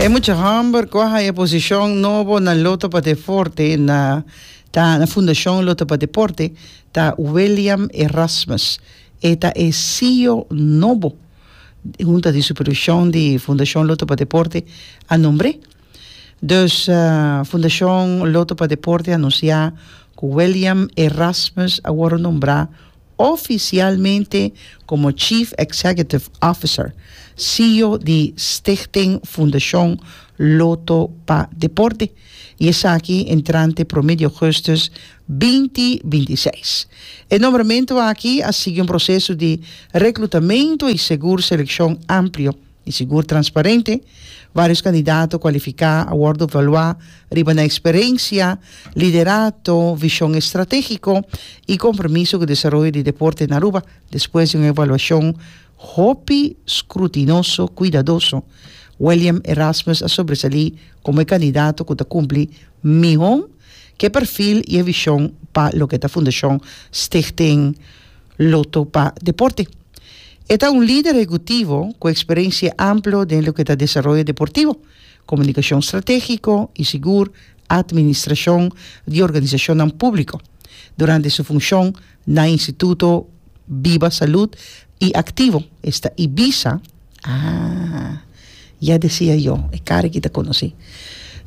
E mucha homber ku a haya e posishon nobo na Loto pa Deporte na ta na Fundashon Loto pa Deporte ta William Erasmus. E ta e CEO nobo hunta di supervishon di Fundashon Loto pa Deporte a nombr'é. Dus Fundashon Loto pa Deporte a anunsiá ku William Erasmus a wòrdu nombrá Oficialmente como Chief Executive Officer, CEO, di Stichting Fundacion Lotto pa Deporte y esaki entrante prome di augustus binti binti seis. E nombramento aki a sigui un proceso di reclutamento y segur seleccion amplio. Di sigur transparente, varios candidato cualifica a wordo valua riba nan experencia, liderato, vision estrategico y compromiso cu desaroyo di deporte na Aruba despues di un evaluacion hopi scrutinoso cuidadoso. William Erasmus a sobresali como e candidato cu ta cumpli miho cu e perfil y e vision pa loke ta Fundacion Stichting Lotto pa deporte. E ta un lider ehecutivo cu experentie amplo den loke ta desaroyo deportivo, comunicacion strategico y sigur administracion di organisacionnan publico durante su funcion na Instituto Biba Salud y Activo esta Ibiza, ah, ya decia yo, e cara aki ta conoci.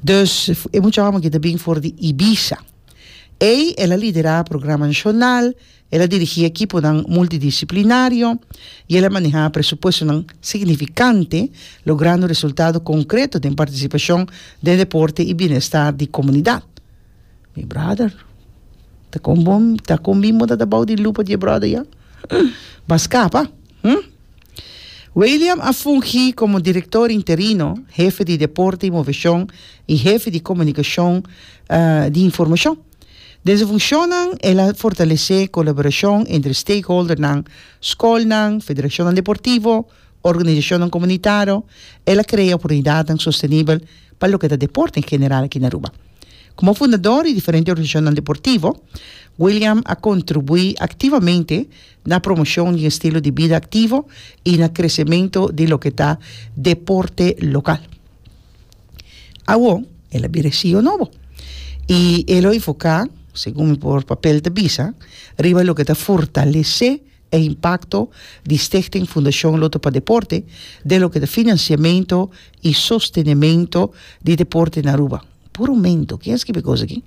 Dus, e mucha homber aki ta bin for di Ibiza. Ey el a lidera programanan nacional El a dirigí ekiponan multidisiplinario i el a manehá presupuestonan signifikante, logrando resultado konkreto den partisipashon den deporte i bienestar di komunidat. Mi bròder, ta kon bo ta kon bin bo ta tabou di lupa di e bròder ya? Bas kapa, hm? Wiliam a fungí komo direktor interino, hefe di deporte i moveshon i hefe di komunikashon di informashon. Den su funcionnan el a fortalece colaboracion entre stakeholdernan, scolnan, federacionnan deportivo, organisacionnan comunitaro, el a crea oportunidadnan sostenibel pa loke ta deporte en general aki na Aruba. Como fundador di diferente organisacionnan deportivo, William a contribui activamente na promocion di un estilo di bida activo y na crecemento di loke ta deporte local. Awor, el a bira e CEO nobo. I e lo enfoká, segun mi por papel ta bisa, riba loke ta fortalesé e impakto di Stichting Fundacion Lotto pa Deporte den loke ta finansiamentu i sostenementu di deporte na Aruba. Puru mento! Ken a skibi e kos aki?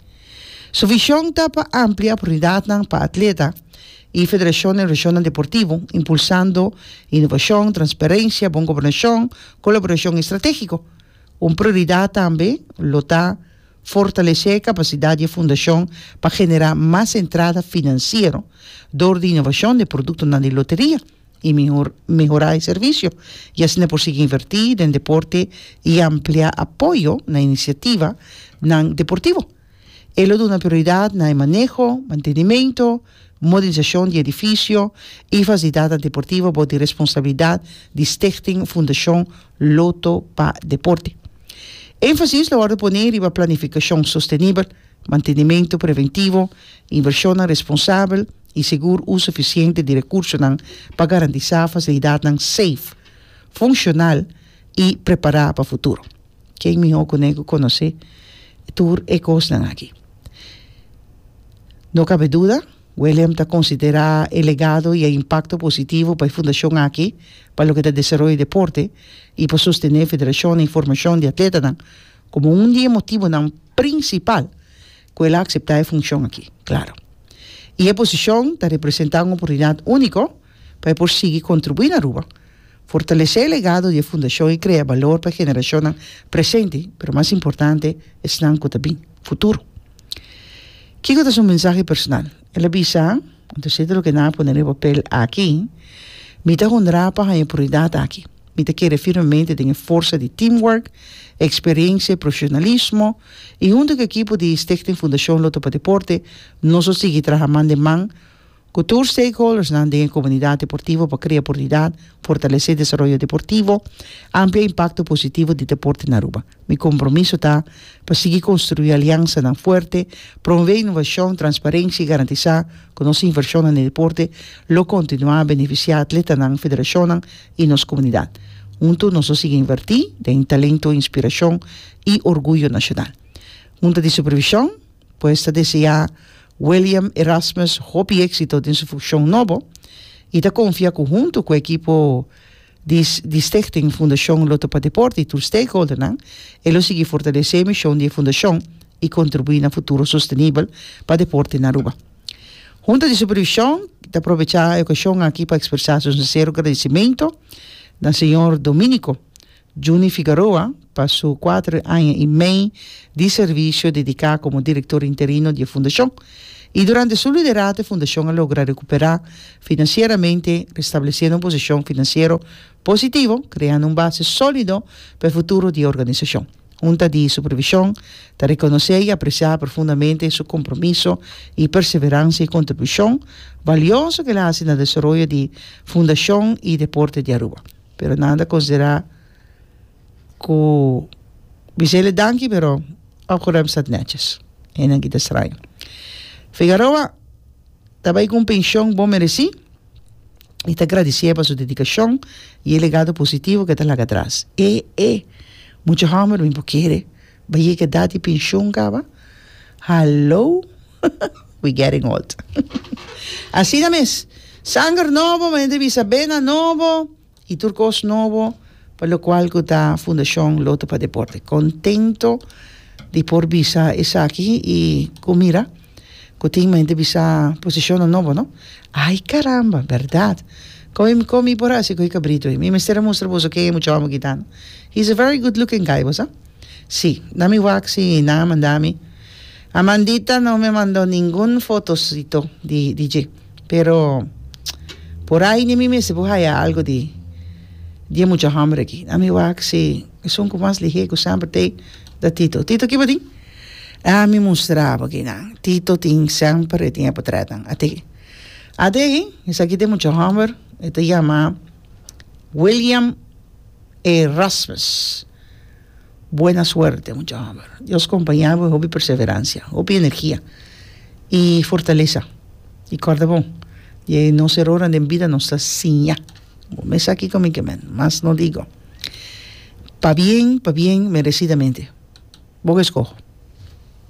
Su vision ta pa amplia oportunidadnan pa atleta y federacionnan y regionnan deportivo, impulsando innovacion, transparencia, bon gobernacion, colaboracion y estrategico. Un prioridad tambe lo ta fortalece e capacidad di e fundacion pa genera mas entrada financiero door di innovacion den productonan di loteria. i mihor mehorá e servisio, i asina por sigui invertí den deporte i ampliá apoyo na inisiativanan deportivo. E lo duna prioridat na e maneho, mantenimento, modernisashon di edifisio i fasilidatnan deportivo bou di responsabilidat di Stichting Fundashon Lotto pa Deporte. Énfasis lo wòrdu poné riba planifikashon sostenibel, Mantenimentu preventivo, invershonnan responsabel i segur uso efisiente di rekursonan pa garantisá fasilidatnan seif, funshonal i prepará pa futuro. Ken mihó ku ne ku konosé tur e kosnan aki? No kabe duda, William ta konsiderá e legado i e impakto positivo pa e fundashon aki pa loke ta desaroyo deporte i pa sostené federashonnan i formashon di atletanan, Komo un di e motibonan prinsipal ku el a akseptá e funshon akí, klaro, i e posishon ta representá un oportunidat úniko pa e por sigui kontribuí na Aruba, fortalesé e legado di e fundashon i krea balor pa e generashonnan presente, pero mas importante esnan ku ta bin, futuro. Kiko ta su mensahe personal? El a bisa. Anto sete loke nan a pone riba papel aki, mi ta hundrada pa haña pruridat aki. Mi ta kere firmemente den e forsa di teamwork, eksperiensia i profeshonalismo, i huntu ku e ekipo di Stichting Fundashon Lotto pa Deporte nos lo sigui traha man den man ku tur stakeholdersnan den e komunidat deportivo pa krea pruridat, fortalesé desaroyo deportivo, amplia impakto positivo di deporte na Aruba. Mi kompromiso ta pa sigui konstruí aliansanan fuerte, promové inovashon, transparensia i garantisá ku nos invershonnan den deporte lo kontinuá benefisiá atletanan, federashonnan i nos komunidat. Huntu nos lo sigui invertí den talento, inspirashon i orguyo nashonal. Hunta di supervishon, pues ta deseá William Erasmus hopi éksito den su funshon nobo i ta konfiá ku huntu ku e ekipo, di di Stichting Fundashon Lotto pa Deporte i tur stakeholdernan, e lo sigui fortalesé e mishon di e fundashon i kontribuí na futuro sostenibel pa deporte na Aruba. Hunta di Supervishon ta probechá e okashon aki pa ekspresá su sinsero gradisimentu na señor Dominico Juni Figaroa, Pa su kuater aña i mei di servisio dediká komo direktor interino di e fundashon, i durante su liderato e fundashon a logra rekuperá finansieramente, restablesiendo un posishon finansiero positivo, kreando un base sólido pa e futuro di e organisashon. Hunta di Supervishon ta rekonosé i apresiá profundamente su kompromiso i perseveransia i kontribushon balioso ku el a hasi na desaroyo di Fundashon i Deporte di Aruba, pero nan ta konsiderá. Ku bisele danki pero ora ku rèm stat nètjes hennan kita straño. Figaroa ta bai ku un penshon bon meresí i ta gradisé pa su dedikashon i e legado positivo ku e ta laga tras. E e mucha hòmber mi por kere bai yega edat di penshon kaba? Hallo we getting old asina mes sanger nobo bai hende bisa bena nobo. Y tur cos nobo pa locual cu ta Fundacion Loto pa Deporte. Contento di por bisa esaki y cu mira cu tin mente bisa posicionnan nobo no. Ay caramba, berdad. Con con mi por haci cu e cabrito ey? Mi mester a mustra boso ken e mucha homber ki ta no. He is a very good looking guy, boso a? Si, na mi wak si nan a manda mi. Amandita no me mando ningun fotosito di di dje. Pero, por ai ni mi mester por haya algo di di e mucha homber aki. A mi wak si esun ku mas lihé ku semper ta ei, ta Tito. Tito kiba tin? A mi mustra bo kinan. Tito tin semper e tin e potrètnan. A tin. A te ei, esaki ta e mucha homber, e ta yama William Erasmus. Buena suerte mucha hober. Dios compaña bo hopi perseverancia, hopi energia y fortalesa y corda bon dje nos erornan den bida nos ta siña bo mes aki cu mi ke men mas no digo pa bien pa bien merecidamente bo ke scoho.